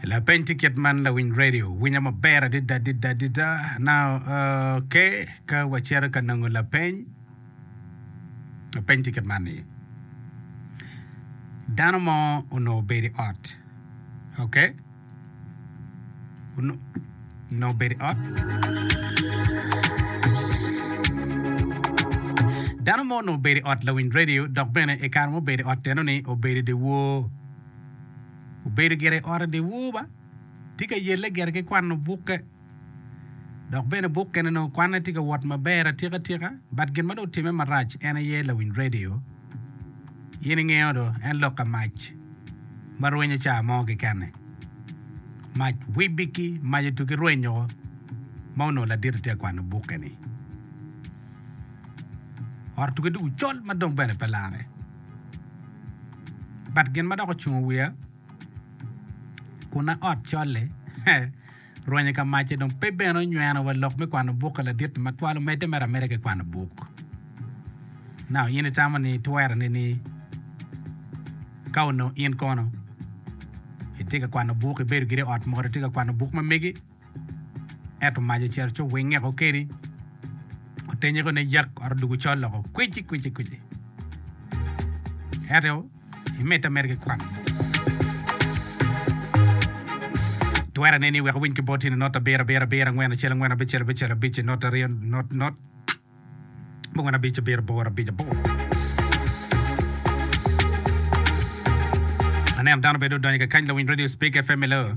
Lapeny tye kit man, lawiny redio winyo maber adada adada adada. Now, uh, okay, ka wacito ka nongo lapeny, lapeny tye kit man ni. Dano mo onongo obedo i ot, okay? Onongo bedo i ot. Dano mo onongo bedo i ot lawiny redio dok bene i kare ma obedo i ot enoni obedo i dye wor. Obedo gire i ot i dye wor ba, tye ka yelle gire ki kwano bukke. Dok bene buk kene nongo kwanne tye ka wot maber atika tika but gin ma dong otime marac en aye lawiny radio in ingeyo do en lok ka mac ma rwenyo ca mo kekene mac wibiki mac otuki rwenyo o ma onongo ladit atye ka kwano buk keni ot otuki dong ocol ma dong bene pe lare but gin ma dok ocungo wiya kuna ot col-li he Rwenyo ka macce dong pe bene onyweno wa lok me kwano buk ka ladit-ti ma twal omedde mere ameda ki kwano buk. Naka in itamo ni itwero nini? Ka onongo in kono itye ka kwano buk, ibedo giri i ot mot itye ka kwano buk ma megi, ento mac ocito ci owingeko kedi, otenye koni yak ot odwogo col loko kwici kwici kwici. Ento Imed ameda ki kwan. Twero ane ni iwek iwiny ki bot tyene not abiro abiro abiro angwen acel angwen abicel abicel abic not aryo not not abongwen abic abiro aboro abic aboro. Aneno dano bedo odonyo kakany lawiny radio Speke FM i loo.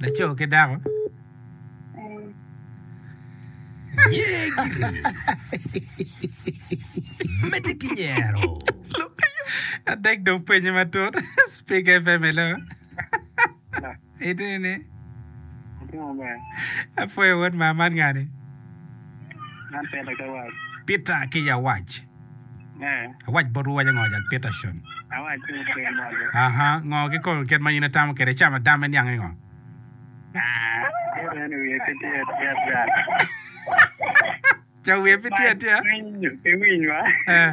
Laco ki dako. Mete ki nyero. Adek dong penye matut. Speak FM hello. Ite ne. Apwoyo wod ma man ngani. Peter ki Yawac. Awac botwu waco ngo jal Peterson? Aha, ngo ki kor kit ma in itamo kede cam adam me niange ngo? Cam wiye pe tye atyea? Eh.